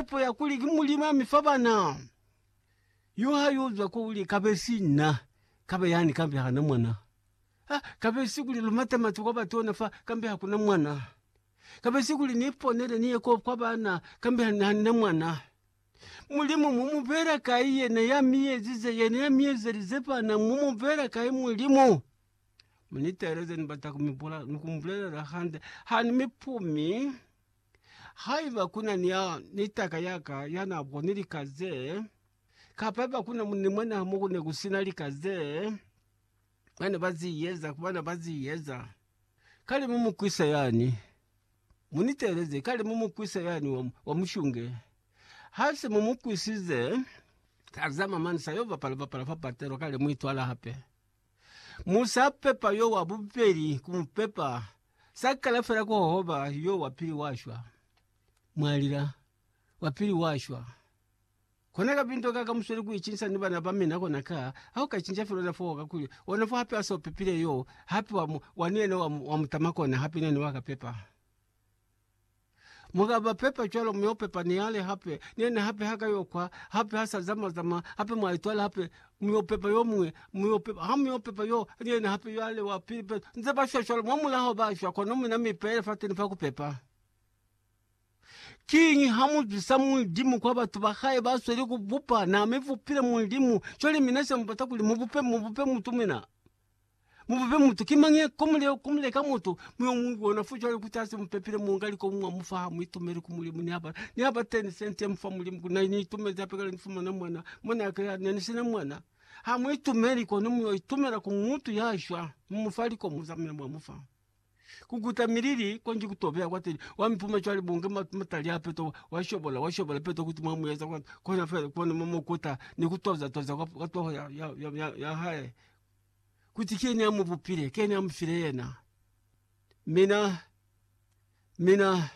Mupo ya kuli ki Mulimu ya mi fa bana yo ha yo zwa ko li, Kabe si nna, kabe yani, kambe ha na mwana. Ha, kabe si kuli lu mate matu kwa batona fa, kambe ha kuna mwana. Kabe si kuli ni ponele ni ye ko kwa bana, kambe ha, ha ni na mwana. Mulimu mu mu beela kai yena ya mi ezize, yena ya mi ezelize bana? Mu mu beela kai Mulimu? Mu ni teeleze, ni bata ku mi bula, ni ku mu bulelela hande. Ha ni mi pumi. Haiba kuna ni ya ni taka ya ka ya na boni lika ze, kapa haiba kuna mu ni mwenaha mo ku ne ku sina lika ze ba ne ba zi eza, ku bana ba zi eza, kale mu mu kwisa yani. Mu ni teeleze, kale mu mu kwisa yani wa, wa mushunge. Ha se mu mu kwisize, tazama, mani sa yo bapala bapala fa patelo, kale mu itwala hape. Mu sa pepa yo wa bubeli ku mu pepa, sa kala fela ku hohoba yo wa pili wa shwa. Mwa lila, Wa pili wa shwa. Kona kabinto ka ka musweli ku icinsa ni bana ba mina kona ka, ha u ka cinca fela ona foo kakuli ona fo hape a so pepile yo, hape wa, wa ni yena wa, wa mutama kona hape ni yena wa ka pepa. Mu ka ba pepa cwalo, mu yo pepa ni yale hape, ni yena hape ha ka yo kwa, hape ha sa zama-zama, hape mwa itwala hape, mu yo pepa yo muñwi, mu yo pepa, ha mu yo pepa yo, ni yena hape, yale wa pili pe. Nze ba shwa cwalo, mwa mulaho ba shwa, kono mina mi pele fateni fa ku pepa. Kiñi ha mu zwisa Mulimu kwa batu ba hae ba sweli ku bupa? Na mi bupile Mulimu, cwale mina se mu bata kuli mu bupe, mu bupe mutu mina. Mubube mutu. Ki mañi ko mule ko mule ka mutu mi yo mu bona fo cwale kuti ase mupepile munga li ko mwa mufa ha mu itumele ku Mulimu ni haba ni haba 10 cent mu fa Mulimu ku na ni itumele hape kale ni fumana mwana mwana yake ya ne ni sina mwana ha mu itumeli kono mu yo itumela ku mutu ya shwa mu mufa li ko mu zamina mwa mufa. kukuta milili konji kutobeha kwateli wamipuma cwale bunge ma- matali apeto washobola washobola peto kuti mwamueza kwani kwena fela kwani mumu ukuta nikutoza toza kwap kwatoho ya- ya- ya- yahae kuti kyeni amuvupile kyeni amufile yena mina mina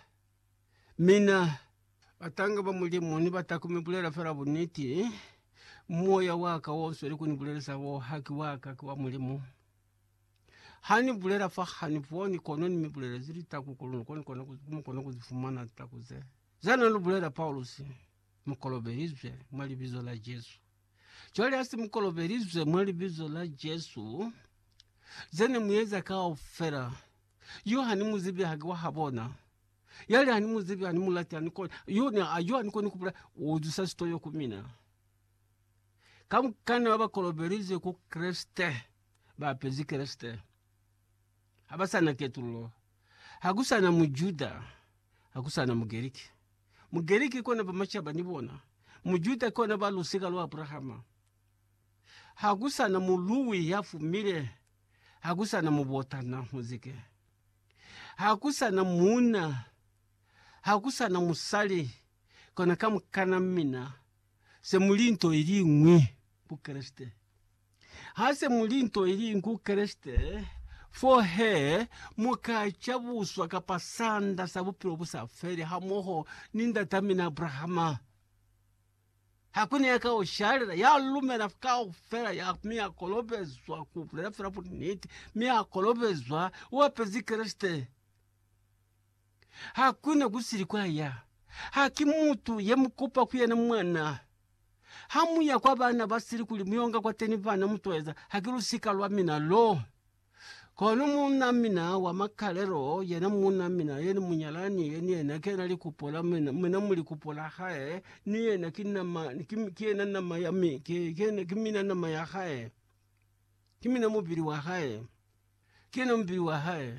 mina atange va mulimu ni vatakume bulela fela buniti moya waka wonswe likuni bulelesa wo haki waka kiwa mulimu. Ha ni bulela fa ha ni boni, kono ni mi bulelezi litaku kuli lu kone kona ku- mu kone ku zi fumana litaku ze. Za na lu bulela Paulusi, mu kolobelizwe mwa Libizo la Jesu. Cwale ha si mu kolobelizwe mwa Libizo la Jesu, ze ne mu eza kaufela, yu ha ni mu zibi, haki wa ha bona. Yali ha ni mu zibi, ha ni mu lati, ha ni koni, yu ne a yu ha ni koni ku bule, u zusa sitoyo ku mina. Ka mukana ba ba kolobelizwe ku Kreste. ba apezi Kreste ha ba sa na ketululo. Ha ku sa na Mujuda, ha ku sa na Mugerike. Mugerike kona ba macaba ni bona, Mujuda kona ba lusika lwa Abrahama. Ha ku sa na muluwi ya fumile, ha ku sa na mubotana muzike. Ha ku sa na muuna, ha ku sa na musali, kona kamukana mina se mu li nto iliñwi ku Kreste. Ha se mu li nto iliñwi ku Kreste, fo he mu ka cabuswa kapa sanda sa bupilo bu sa feli hamoho ni ndatamina Abrahama. Ha ku na ya ka ushalela, ya lumela kaufela ya, mi a kolobezwa ku bulela fela buniti, mi a kolobezwa u apezi Kreste. Hakuna kusili kwa ya. Ha ki mutu ye mu kupa ku yena mwana. Ha mu ya kwa bana ba sili kuli mu yo nga kwateni bana, mu toeza, Ha ki lusika lwa mina lo. Kono muuna mina wa makalelo, yena muuna mina, yena munyalani ye, ni yena kena likupo la mina, mina mu likupo la hae, ni yena ki nama, ki, ki yena nama ya mi, ki, ki yena, ki mina nama ya hae. Ki mina mubili wa hae. Ki yena mubili wa hae.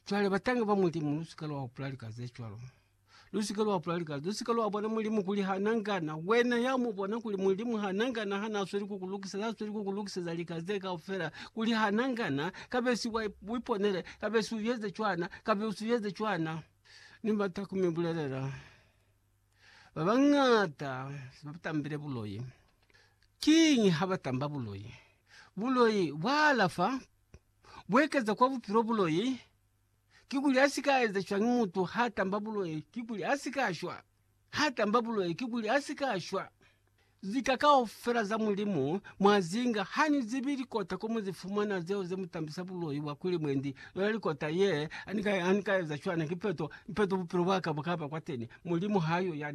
Cwale batangi ba Mulimu, lusika lwa hupula lika ze cwalo. Lusika lwa hupula lika, lusika lwa bona Mulimu kuli ha na ngana. Wena ya mu bona kuli Mulimu ha na ngana ha na sweli ku ku lukiseza, ha sweli ku ku lukiseza lika ze kaufela, kuli ha na ngana, kabesi wa iponele, kabesi u eze cwana, kabesi u eze cwana. Ni bata ku mi bulelela. Ba bañata ba tambile buloi. Kiñi ha ba tamba buloi? Buloi bwa alafa bu ekeza kwa bupilo. Buloi kikuli a si ka eza cwañi? Mutu ha tamba buloi kikuli a si ka shwa. Ha tamba buloi kikuli a si ka shwa. Zika kaufela za Mulimu mwa zinga ha ni zibi likota ko mu zi fumana zeo ze mu tambisa buloi bwa kuli mwendi yona likota ye, ha ni ka eza cwana ki peto, ni peto bupilo bwa ka bu ka ba kwateni. Mulimu ha yo yani.